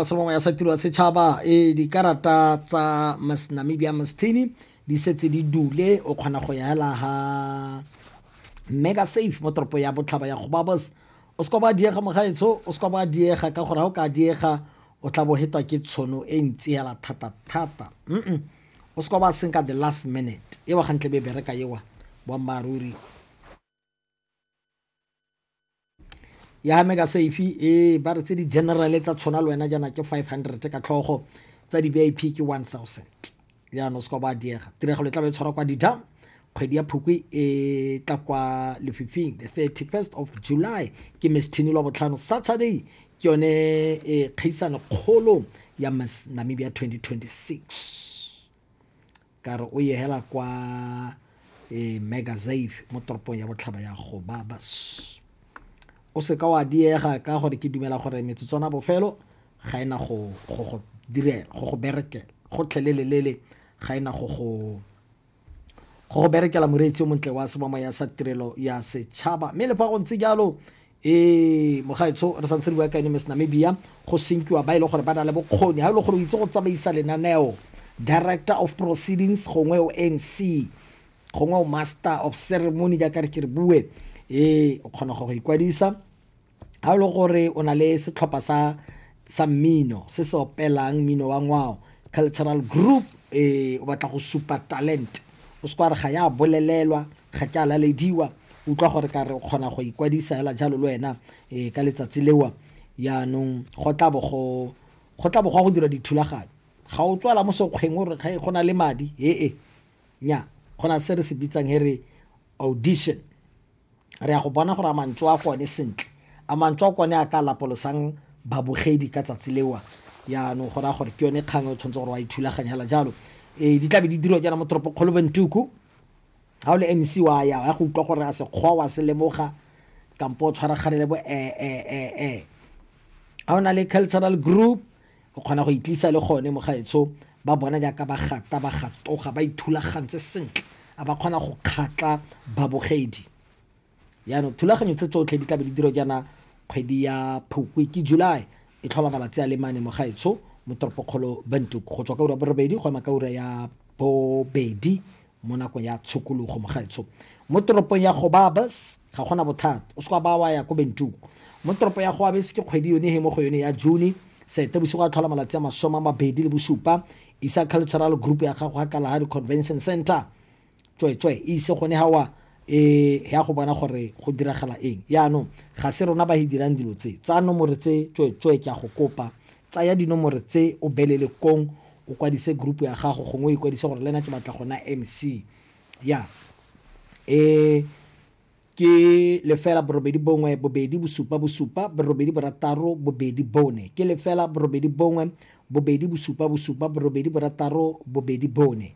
se mongwe ya sa tiro ya setšhaba e dikarata tsa miss namibia mastini di setse di dule o kgona go yaela ga mega safe mo toropo ya botlhaba ya gobabos o se ka ba diega mogaetsho o se ka ba diega ka gore ga o ka diega o tla bo hetwa ke tshono e ntsi hela thata-thata mm o se ka ba senka the last minute e wa gantle be bereka ewa boammaaruri ya mega safe e ba re tse di general tsa tshwana le wena jaana ke 500 ka tlhogo tsa di vip ke 1000 jaanong se ka ba diega tiragalo e tla ba e tshwara kwa dida kgwedi ya phukwi e tla kwa lefifing the 31st of july ke mesthini lwa botlhano saturday ke yone e kgaisano kgolo ya miss namibia 2026 Ka re o ye hela kwa e, Megasave mo toropong ya botlhaba ya Gobabas. O seka wa diega ka gore ke dumela gore metsotswana bofelo ga ena go go go direla go go berekela gotlhelelelele ga ena go go go go berekela moreetsi o montle wa sebamaya sa tirelo ya setšhaba mme le fa go ntse jalo ee mogaetsho re santse re bua ka yone miss namibia go senkiwa ba e le gore ba na le bokgoni ga e le gore o itse go tsamaisa lenaneo director of proceedings gongwe o mc gongwe o master of ceremony jaaka re ke re bue ee o kgona go go ikwadisa ga e le gore o na le setlhopha sa sa mmino se se opelang mmino wa ngwao cultural group e o batla go supa talent o se kwa re ga ya bolelelwa ga ke a lalediwa utlwa gore ka re o kgona go ikwadisa fela jalo le wena um ka letsatsi lewa yaanong go tla bo go go tla bo go go dira dithulaganyo ga o tswala mo sekgweng o re ga go na le madi ee nya go na se re se bitsang he re audition re ya go bona gore a mantswe a gone sentle a mantswe a kone a ka lapolosang babogedi ka tsatsi lewa yaanong go raya gore ke yone kgang o tshwanetse gore wa ithulaganyela jalo um di tlabe di dirwa jaana mo toropo kgolo bentuku ga o le mc wa ya ya go utlwa gore a sekgwa wa se lemoga kampo o tshwaraganele bo ee ga o na le cultural group O kgona go itlisa le gone mogaetsho ba bona jaaka ba gata ba gatoga ba ithulagantse sentle a ba kgona go kgatla babogedi yaanong thulaganyo tse tsotlhe di tlabe di diro jaana kgwedi ya phukwi ke july e tlhola malatsi a le mane mogaetsho mo toropokgolo bantuk go tswa ka ura borobedi go ema ka ura ya bobedi mo nakong ya tshokologo mogaetsho mo toropong ya gobabas ga gona bothata o seka ba wa ya ko bentuku mo toropo ya gobabas ke kgwedi yone he mo go yone ya june sete bosigo a tlhola malatsi a masome a mabedi le bosupa isa cultural group ya gago ga kalahari convention center tsweetswe e ise gone gawa e ya go bona gore go diragala eng yaanong ga se rona ba e dirang dilo tse tsa nomore tse tsweetswe ke ya go kopa tsaya dinomore tse o belele kong o kwadise group ya gago gongwe o ikwadise gore le ena ke batla gona mc ya e ke lefela borobedi bongwe bobedi bosupa bosupa borobedi borataro bobedi bone ke lefela borobedi bongwe bobedi bosupa bosupa borobedi borataro bobedi bone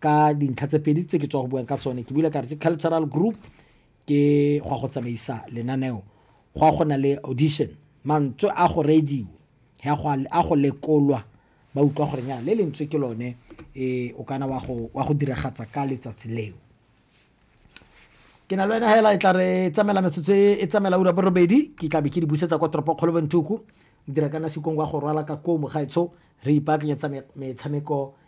ka dintlha tse pedi tse ke tswa go buang ka tsone ke bile ka re ke cultural group ke go ya go tsamaisa lenaneo go a go na le audition mantswe a go radio ya go a go lekolwa ba utlwa gore nya le lentswe ke lone e o kana wa go wa go diragatsa ka letsatsi leo ke na le wena hela e tla re tsamela metsotso e, e tsamela ura borobedi ke tlabe ke di busetsa kwa toropo kgolo benthuku dira kana sekong wa go rwala ka koo mogaetsho re ipaakanyetsa metshameko